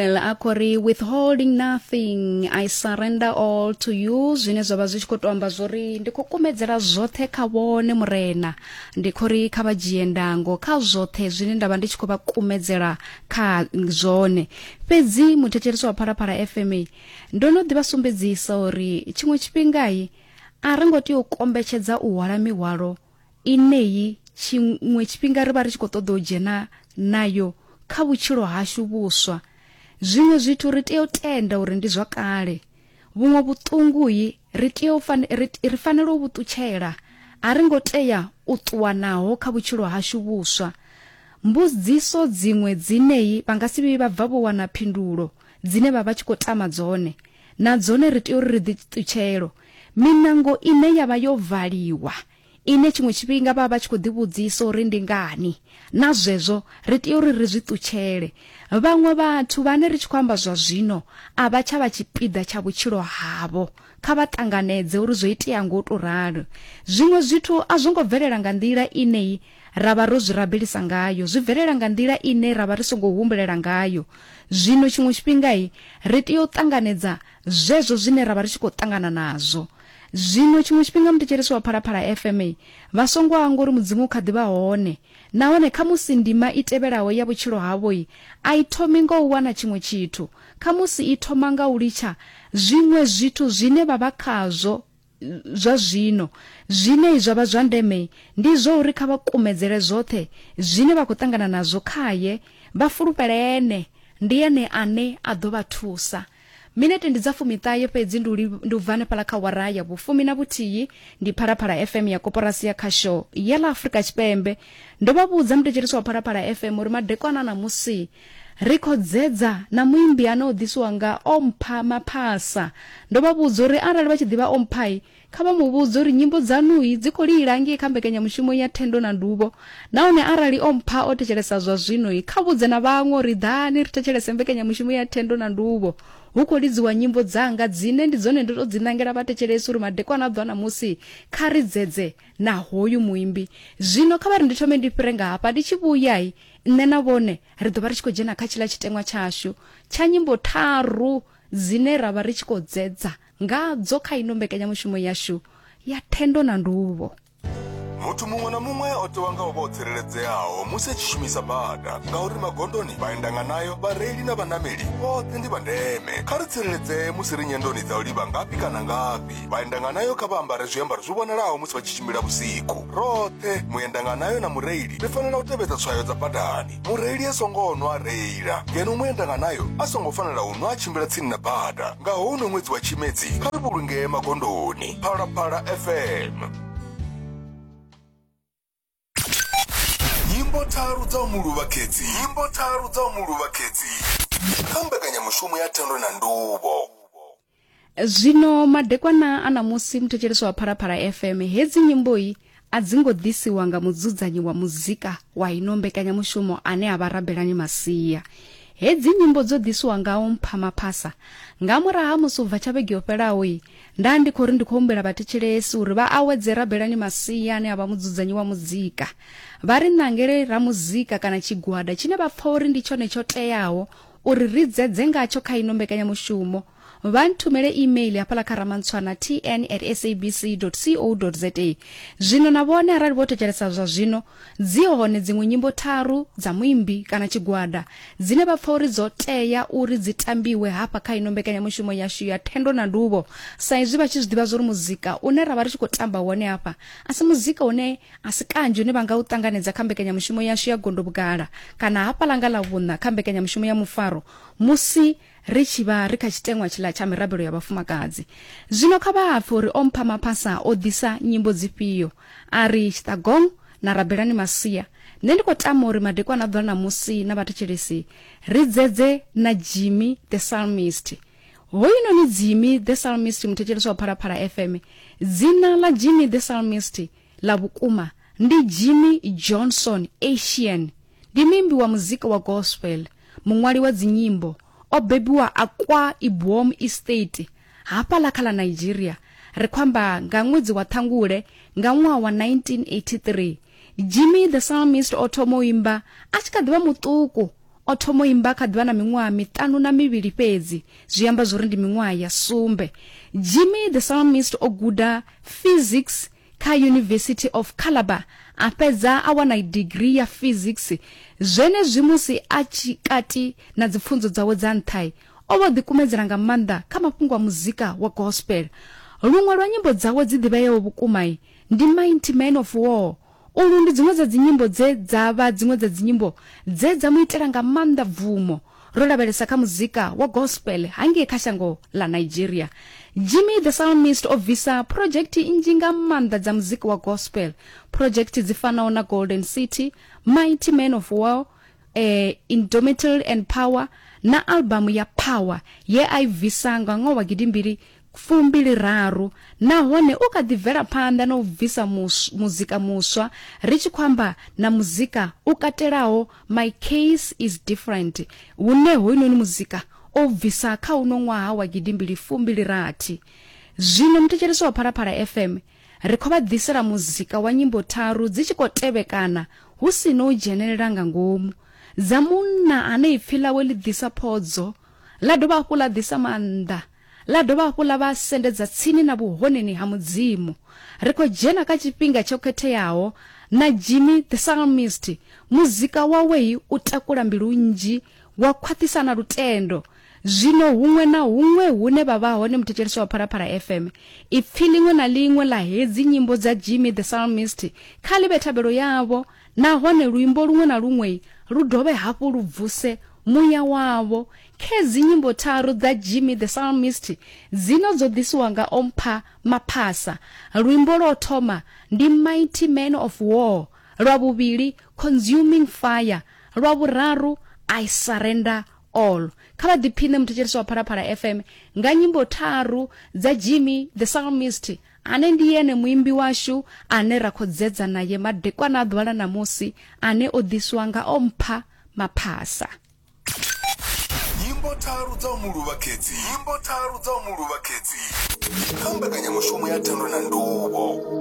a khou ri withholding nothing i surrender all to you zwine zwa vha zwi tshi khou tou amba zwori ndi khou kumedzela zwoṱhe kha vhone murena ndi khou ri kha vha dzhie ndango kha zwoṱhe zwine nda vha ndi tshi khou vha kumedzela kha zwone fhedzi muthetshelesi wa phalaphala fma ndo no ḓi vha sumbedzisa uri tshiṅwe tshifhingai a ri ngo tea u kombetshedza u hwala mihwalo ineyi tshiṅwe tshifhinga ri vha ri tshi khou ṱoḓa u dzhena nayo kha vhutshilo hashu vhuswa zwiṅwe zwithu ri tea u tenda uri ndi zwa kale vhuṅwe vhuṱunguyi ri tea u ri fanela u vhu ṱutshela a ri ngo tea u ṱuwa naho kha vhutshilo hashu vhuswa mbudziso dziṅwe dzineyi vha nga si vhuyi vha bva vho wana phindulo dzine vha vha tshi khou tama dzone na dzone ri tea uri ri ḓi ṱutshelo Miṋango ine ya vha yo valiwa, ine tshiṅwe tshifhinga vha vha vha tshi khou ḓivhudzisa uri ndi ngani. Na zwezwo, ri tea uri ri zwi ṱutshele. Vhaṅwe vhathu vhane ri tshi khou amba zwa zwino a vha tsha vha tshipiḓa tsha vhutshilo havho. Kha vha ṱanganedze uri zwo itea nga u tou ralo. Zwiṅwe zwithu a zwo ngo bvelela nga nḓila ine ra vha ro zwi rabelisa ngayo, zwi bvelela nga nḓila ine ra vha ri songo humbulela ngayo. Zwino tshiṅwe tshifhinga ri tea u ṱanganedza zwezwo zwine ra vha ri tshi khou ṱangana nazwo. Zwino tshiṅwe tshifhinga muthetshelesi wa Phalaphala FM vha songo hangwa uri Mudzimu u kha ḓi vha hone, nahone khamusi ndima i tevhelaho ya vhutshilo havho a i thomi nga u wana tshiṅwe tshithu, khamusi i thoma nga u litsha zwiṅwe zwithu zwine vha vha khazwo zwa zwino. Zwine zwa vha zwa ndeme ndi zwa uri kha vha kumedzele zwoṱhe zwine vha khou ṱangana nazwo khaye, vha fulufhele ene, ndi ene ane a ḓo vha thusa. Minete ndi dza fumiṱahe fhedzi ndi u, li, ndi u bva hanefhala kha wara ya vhufumi na vhuthihi. Ndi Phalaphala FM ya Koporasi ya Khasho ya ḽa Afrika Tshipembe. Ndo vha vhudza muthetshelesi wa Phalaphala FM uri madekwana a ṋamusi Ri khou dzedza na muimbi ane o ḓisiwa nga Ompha Maphasa. Ndo vha vhudza uri arali vha tshi ḓivha Omphai, kha vha mu vhudze uri nyimbo dzaṋui dzi khou lila ngei kha mbekanyamushumo ya Thendo na Nduvho. Nahone arali Ompha o thetshelesa zwa zwino, kha vhudze na vhaṅwe uri ḓani ri thetshelese mbekanyamushumo ya Thendo na Nduvho. Hu khou lidziwa nyimbo dzanga dzine ndi dzone ndo tou dzi ṋangela vhathetshelesi uri madekwana a ḓwa ṋamusi kha ri dzedze na hoyu muimbi. Zwino kha vha ri ndi thome ndi fhire nga hafha, ndi tshi vhuya, Nṋe na vhone ri ḓo vha ri tshi khou dzhena kha tshiḽa tshiteṅwa tshashu tsha nyimbo tharu dzine ra vha ri tshi khou dzedza ngadzo kha ino mbekanyamushumo yashu ya thendo na nduvho. Muthu muṅwe na muṅwe o tewa nga u vha o tsireledzeaho musi a tshi shumisa bada ngauri magondoni vhaendanganayo, vhareili na vhanameli vhoṱhe ndi vha ndeme. Kha ri tsireledzee musi ri nyendoni dza u livha ngafhi kana ngafhi. Vhaendanganayo kha vha ambare zwiambaro zwi vhonalaho musi vha tshi tshimbila vhusiku. Roṱhe, muendanganayo na mureili ri fanela u tevhedza tswayo dza badani. Mureili a songo nwa a reila, ngeno muendanganayo a songo fanela u nwa a tshimbila tsini na bada. Nga houno ṅwedzi wa Tshimedzi, kha ri vhulungee magondoni. Phalaphala FM. nyimbo tharu dza u mu luvha khedzi nyimbo tharu dza u mu luvha khedzi kha mbekanyamushumo ya thendo na nduvho zwino madekwana a ṋamusi muthetshelesi wa phalaphala fm hedzi nyimbo-i a dzi ngo ḓisiwa nga mudzudzanyi wa muzika wa ino mbekanyamushumo ane a vha rabelani masia hedzi nyimbo dzo ḓisiwa ngawo mphamaphasa nga murahu ha musi u bva tsha vhege yo fhelaho-i Nda ndi khou ri ndi khou humbela vhathetshelesi uri vha awedze Rabelani Masia ane a vha mudzudzanyi wa muzika. Vha ri ṋangele ramuzika kana tshigwada tshine vha pfa uri ndi tshone tsho teaho uri ri dzedze ngatsho kha ino mbekanyamushumo. Vha nthumele email hafhaḽa kha ramantshwana tn at sabc co za. Zwino na vhone arali vho thetshelesa zwa zwino dzi hone dziṅwe nyimbo tharu dza muimbi kana tshigwada dzine vha pfa uri dzo tea uri dzi tambiwe hafha kha ino mbekanyamushumo yashu ya thendo na nduvho sa izwi vha tshi zwi ḓivha zwa uri muzika une ra vha ri tshi khou tamba wone hafha a si muzika une a si kanzhi une vha nga u ṱanganedza kha mbekanyamushumo yashu ya gondo vhugala kana hafha langa ḽa vhuṋa kha mbekanyamushumo ya mufaro musi ri tshi vha ri kha tshiteṅwa tshiḽa tsha mirabelo ya vhafumakadzi zwino kha vha hapfe uri o mpha maphasa o ḓisa nyimbo dzifhio a ri tshiṱagong na rabelani masia nṋe ndi khou tama uri madekwana a ḓula na musi na vhathetshelesi ri dzedze na jimmy the psalmist hoyunoni jimmy the psalmist muthetshelesi wa phalaphala fm dzina ḽa jimmy the psalmist ḽa vhukuma ndi jimmy johnson asian Ndi muimbi wa muzika wa gospel, muṅwali wa dzinyimbo, o bebiwa Akwa Ibom Estate, hafhaḽa kha ḽa Nigeria, ri khou amba nga ṅwedzi wa Ṱhangule nga ṅwaha wa 1983. Jimmy the Psalmist o thoma u imba a tshi kha ḓi vha muṱuku, o thoma u imba a kha ḓi vha na miṅwaha miṱanu na mivhili fhedzi, zwi amba zwo ri ndi miṅwaha ya sumbe. Jimmy the Psalmist o guda physics kha University of Calabar a fhedza a wana degree ya physics. Zwenezwi musi a tshi kati na dzipfunzo dzawe dza nṱha, o vha o ḓikumedzela nga maanḓa kha mafhungo a muzika wa gospel. Luṅwe lwa nyimbo dzawe dzi ḓivheaho vhukuma ndi Mighty Man of War. Ulu ndi dziṅwe dza dzinyimbo dze dza vha dziṅwe dza dzinyimbo dze dza mu itela nga maanḓa bvumo. Ro lavhelesa kha muzika wa gospel hangei kha shango ḽa Nigeria. Jimmy the Psalmist o bvisa phurojekthi nnzhi nga maanḓa dza muzika wa gospel. Phurojekthi dzi fanaho na Golden City, Mighty Man of War, eh, Indomitable and Power na albamu ya Power ye a i bvisa nga ṅwaha wa gidimbili fumbili raru nahone u kha ḓi bvela phanḓa na u bvisa muzika muswa ri tshi khou amba na muzika u katelaho my case is different hune hoyunoni muzika o bvisa kha uno ṅwaha wa gidimbili fumbili rathi zwino muthetshelesi wa phalaphala fm ri khou vha ḓisela muzika wa nyimbo tharu dzi tshi khou tevhekana hu si no u dzhenelela nga ngomu dza munna ane ipfi ḽawe ḽi ḓisa phodzo ḽa dovha hafhu ḽa ḓisa maanḓa ḽa dovha hafhu ḽa vha sendedza tsini na vhuhoneni ha Mudzimu. Ri khou dzhena kha tshifhinga tsho khetheaho, na Jimmy the Psalmist, muzika wawe i u takula mbilu nnzhi, wa khwaṱhisa na lutendo. Zwino huṅwe na huṅwe hune vha vha hone muthetshelesi wa Phalaphala FM, ipfi ḽiṅwe na ḽiṅwe ḽa hedzi nyimbo dza Jimmy the Psalmist kha ḽi vhe thabelo yavho, nahone luimbo luṅwe na luṅwe lu dovhe hafhu lu vuse muya wavho Khedzi nyimbo tharu dza Jimmy the Psalmist dzino dzo ḓisiwa nga o mpha maphasa. Luimbo lwo thoma ndi Mighty Man of War, lwa vhuvhili Consuming Fire, lwa vhuraru I Surrender All. Kha vha ḓiphiṋe muthetshelesi wa Phalaphala FM nga nyimbo tharu dza Jimmy the Psalmist ane ndi ene muimbi washu ane ra kho dzedza naye madekwana a ḓuvha ḽa ṋamusi ane o ḓisiwa nga o mpha maphasa. nyimbo tharu dza u mu luvha khedzi nyimbo tharu dza u mu luvha khedzi kha mbekanyamushumo ya thando na nduvho